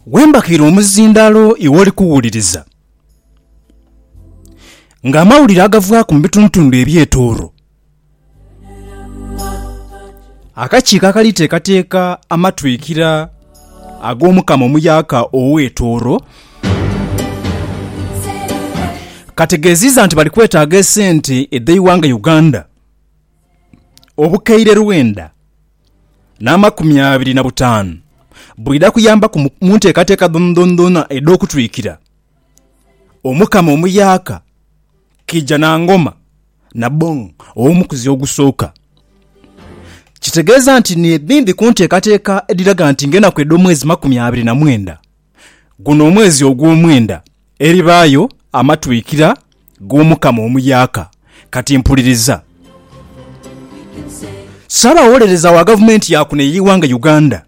Wembakiire omuzindaalo iwe oli kuwuliriza, ng'amawulire agavaaku mu bitundutundu eby'etooro. Akakiiko akali teekateeka amatwikira ag'Omukama omuyaaka ow'etooro, kategeeziiza nti bali kwetaaga esente edh'eighanga Uganda obukaire lwenda. n'amakumi abiri na butaanu, bwidha kuyambaku mu nteekateeka dhoonadhoona edh'okutwikira Omukama omuyaaka Kiija na Ngoma Nabong ow'omukuzi ogusooka. Kitegeeza nti n'edhindhi ku nteekateeka edhiraga nti ng'enaku edh'omwezi makumi abiri na mwenda Guno omwezi ogw'omwenda eribaayo amatwikira g'Omukama omuyaaka. Kati mpuliriza. Ssaabawolereza wa gavumenti ya kuno ey'eighanga Uganda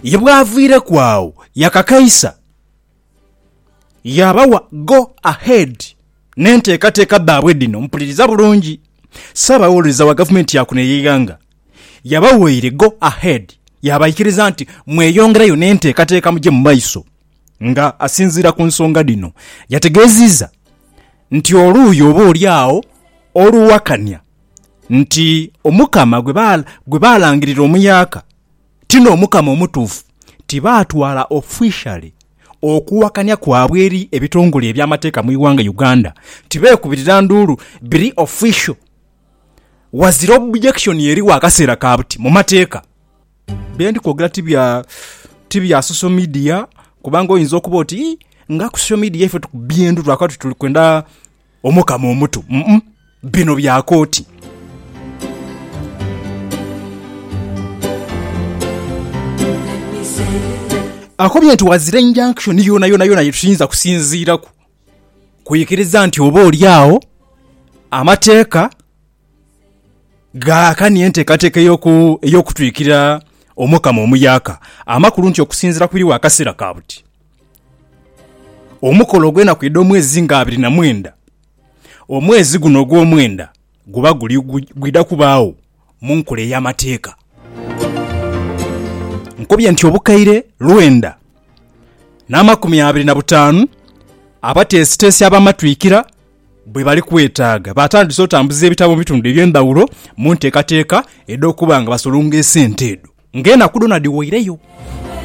ye bw'aviireku agho yakakaisa yaabawa go ahead n'enteekateeka dhaabwe dhino. Mpuliriza bulungi, Ssaabawolereza wa Gavumenti ya kuno ey'eighanga yabawaire go ahead yaabaikiriza nti mweyongerayo n'enteekateeka muje mu maiso nga asinziira ku nsonga dhino. Yategeezizza nti oluuyi oba oli agho oluwakanya nti Omukama gwe baalangirira omuyaaka ti n'Omukama omutuufu, tibaatwala officially okuwakanya kwabwe eri ebitongole eby'amateeka mu ighanga Uganda, tibeekubirira nduulu, biri official, wazira objection eri w'akaseera ka buti mu mateeka. Bye ndi kwogera ti bya, ti bya social media, kubanga oyinza okuba oti, Ii, nga ku social media ife tukubbye endhu lwakuba tuti tuli kwenda, Omukama omutu um bino byaaka oti. Akobye nti ghazira injunction yonayonayona ye tuyinza kusinziiraku kwikiriza nti oba oli agho amateeka gaakania enteekateeka ey'okutwikira Omukama omuyaaka, amakulu nti okusinziira ku biri wakaseera ka buti. Omukolo ogw'enaku edh'omwezi nga abiri na mwenda, omwezi guno ogw'omwenda guba guli gwidha kubaagho mu nkola ey'amateeka. Nkobye nti obukaire lwenda n'amakumi abiri na butaanu abateesiteesi ab'amatwikira bwe bali kwetaaga. Baatandise otambuza ebitabo mu bitundu eby'endhaghulo mu nteekateeka edh'okuba nga basolonga esente edho ng'enaku dhoona dhiweireyo.